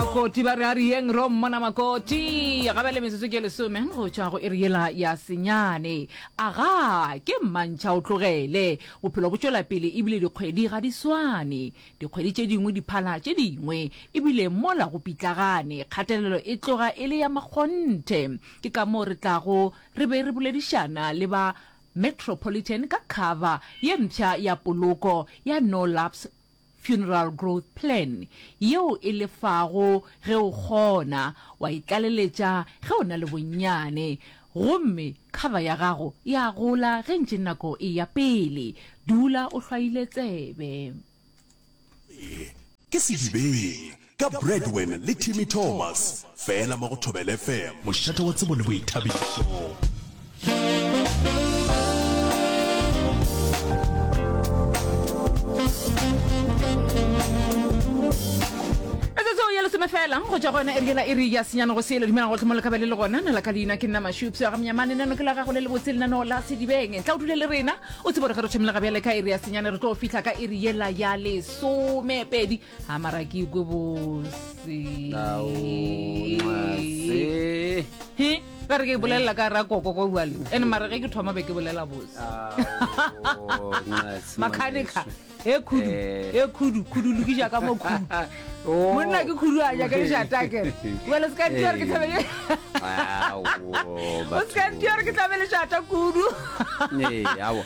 makoti ba re a riyeng ro mmona makoti ga ba le metsotso ke lesome go tšwa go e riyela ya senyane aga ke mmantšha o tlogele bophelo bo tšwela pele ebile dikgwedi ga di swane dikgwedi tše dingwe di phala tše dingwe ebile mola go pitlagane kgatelelo e tloga e le ya makgonthe ke ka moo re tlago re be re boledišana le ba metropolitan ka cover ye mpsha ya poloko ya no laps Funeral Growth Plan, yeo e lefago ge o kgona, wa e tlaleletša ge o na le bonnyane, gomme cover ya gago e a gola ge ntše nako e ya pele. Dula o hlwaile tsebe. Ke sedibeng. Ka Bradwin le Timmy Thomas, fela mo go Thobela FM. Mošate wa tsebo le boithabišo. fela go ja gona e rile e re ya senyana go sele dumela gotlhe mo le kabele le gona na la ka leina ke nna mashupso ya ga menyamane nano ke la gago le le botse lenaneo la sedibeng tla o dule le rena o tsebo re ge re thomile ga bjale ka e re ya senyana re tlo fitlha ka e re yela ya lesomepedi a mara ke ikwe bose He, ba re ke bolelela ka ra koko ko bjale and mara ge ke thoma be ke bolela bose makanika e khudu Eh. e khudu khudu lokiša ka mo khudu Oh. monna ke khudu a jaka lešatake bale se ka ntiore ke thabele o se ka ntiore ke thabele šata kudu Ee, aowa.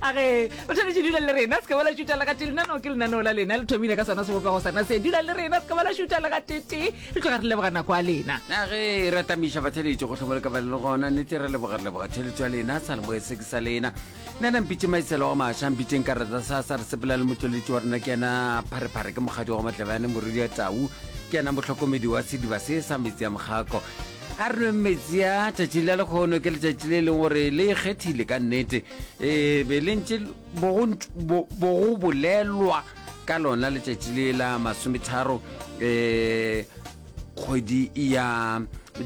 a ge o tshwanetse dula le rena se ka bala šuta lega tee lenaneo ke lenaneo la lena le thomile ka sona sebopego sana se dula le rena se ka bala šuta lega tete re tloga re leboga nako a lena na ge e ratamiša batheletše go tlhomole ka bale le gona nete re leboga re leboga theletso ya lena sa leboe se ke sa lena nna na mpitše maiselo wa maša mpitšeng ka rata sa sa re sepela le motšweletši wa rena ke yena pharephare ke mokgadi wa go matlebane moredi ya tau ke yena motlhokomedi wa sediba se sa metsi ya mokgako a re nweng metsi a tšatši la lekgono ke letšatši le e leng gore le ikgethile ka nnete um be le ntše bogo bolelwa ka lona letšatši le la masometharo um kgwedi ya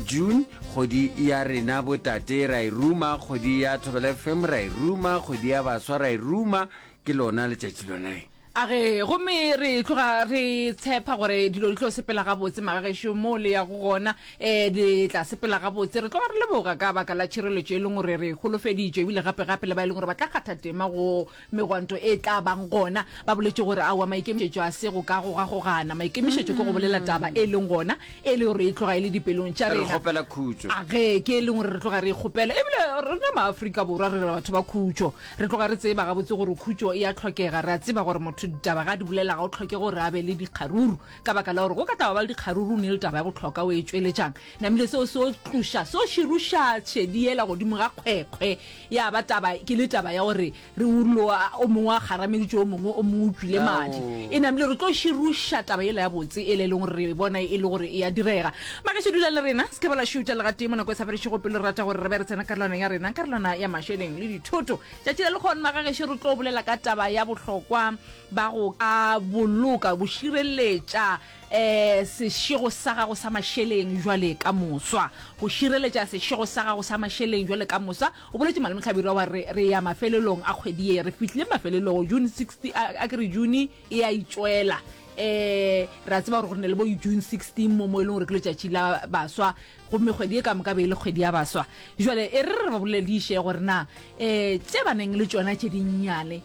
june kgwedi ya rena botate ra e ruma kgwedi ya thobela fm ra e ruma kgwedi ya baswa ra e ruma ke lona letšatši lona A re, Gomme re tloga re tshepa gore dilo di tlo sepela gabotse, magagešo, moo le yago gona. Ee, di tla sepela gabotse. Re tloga re leboga ka baka la tšhireletšo e leng gore re e holofeditšwe, ebile gape-gape le ba e leng gore ba tla kgatha tema go megwanto e tla bang gona. Ba boletše gore, Aowa, maikemišetšo a se go ka gogagogana. Maikemišetšo ke go bolela taba e leng gona, e le gore e tloga e le dipelong tša Re rena. kgopela khutšo. A ge ke e leng gore re tloga re e kgopela. Ebile rena maAfrika Borwa re batho ba khutšo. Re tloga re tseba gabotse gore khutšo e a hlokega. Re a tseba gore motho ditaba ge a di bolela ga go hloke gore a be le dikgaruru. Ka baka la gore go ka tla wa ba le dikgaruru o ne le taba ya go hloka o e tšweletšang. Namile seo se tloša, seo širuša tšhedi yela godimo ga kgwekhwe. Ya ba taba ke le taba ya gore re ullo a, o mongwe a kgarameditše o mongwe, o mongwe o tšwile madi. E namile re tlo širuša taba yela ya botse yela e leng gore re e bona e le gore e a direga. Magašo, dula le rena, se ke ba la šutha legatee mo nako e sa fedišego pelo. Re rata gore re be re tsena karolwana ya rena, karolwana ya mašeleng le dithoto. Tšatši le lekgono, magageše, re tlo bolela ka taba ya bohlokwa ba go ka boloka, go šireletša um sešego sa gago sa mašeleng jwale ka moswa. Go šireletša sešego sa gago sa mašeleng jwale ka moswa. O boletše Malome Hlabirwa wa re, re ya mafelelong a kgwedi ye. Re fihlile mafelelong, June 16, a ke re June. e a itswela um re a tseba gore go ne le bo june 16 mo mo e leng gore ke letšatši la baswa gomme kgwedi e ka moka be e le kgwedi ya baswa jale e re re ba bolele diše gore na um tše ba neng le tšona tše dinnyane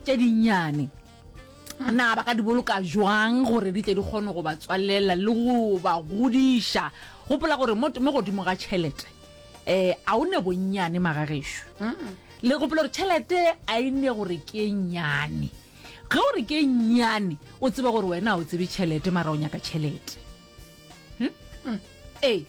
tše dinnyane na ba ka di boloka jwang gore di tle di kgone go ba tswalela le go ba godiša gopola gore mo godimo ga tšhelete um a o ne bonnyane magagešo le gopola gore tšhelete a e ne gore ke e nnyane Ge o re ke nnyane, o tseba gore wena ha o tsebe tšhelete mara o nyaka tšhelete. Hm? Ee.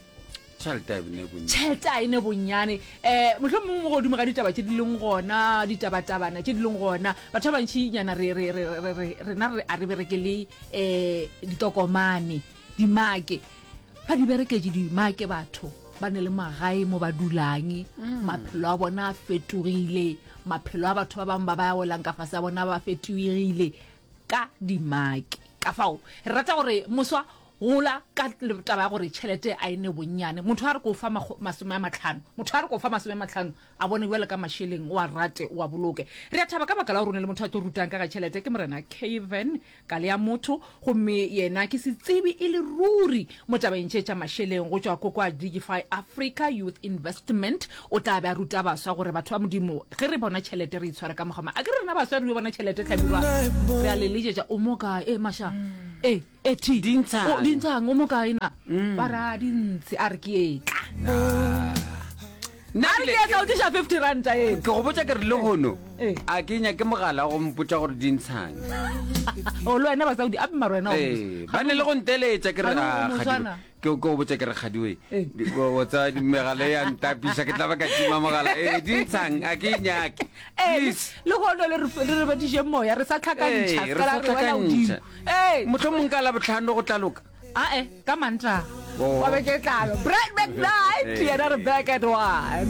Tšhelete a e ne bonnyane. Tšhelete a e ne bonnyane. Eh, mohlomong mongwe mo godimo ga ditaba tše di leng gona, ditabatabana tše di leng gona. Batho ba bantši nyana re re re re re rena re a re berekele eh ditokomane. dimake ba di bereketše dimake batho ba ne le magae mo ba dulang mm. maphelo a bona a fetogile maphelo a batho ba bangwe ba ba ya welang ka fase a bona ba fetogile ka dimake ka fao re rata gore moswa gola ka taba ya gore tšhelete a e ne bonnyane motho a re ko fa masome a matlhano motho a re ko fa masome a matlhano a bone jale ka mašeleng wa rate wa boloke re a thaba ka baka la gore o ne le motho a tlo rutang ka ga tšhelete ke morena caven Kale ya motho, gomme yena ke setsebi e le ruri mo tabeng tše tša mašeleng go tšwa ko kwa Digify Africa Youth Investment. O tla be a ruta baswa gore batho ba Modimo ge re bona tšhelete re itshware ka mokgwa mang. A ke re rena baswa re yo bona tšhelete, Hlabirwa? Re a le letšetša. O mo kae? Ee, Masha. Ee, ee, Thi. Dintshang. O, Dintshang, o mo kae na? Ba re, A, dintshi. A re, Ke etla. Nna ke ile ka o tliša fifty ranta ee. Ke go botša ke re lehono a ke nyake mogala wa go mpotša gore di ntshang. O le wena basaudi ape mara wena o. Ee, ba ne le go nteletša ke re ga kgadiwe. Ke go botša ke re kgadiwe. O tsa megala ya ntapiša ke tla ba ka tima mogala. Ee, di ntshang a ke nyake. Please. Le hono le re re badiše moya re sa tlhakantšha. Ee, re sa tlhakantšha. Ee. Mohlomong ka la botlhano go tla loka. Ae, ka Mantaha. Wa be ke tlalo. Break back night. Yena Rebecca at one.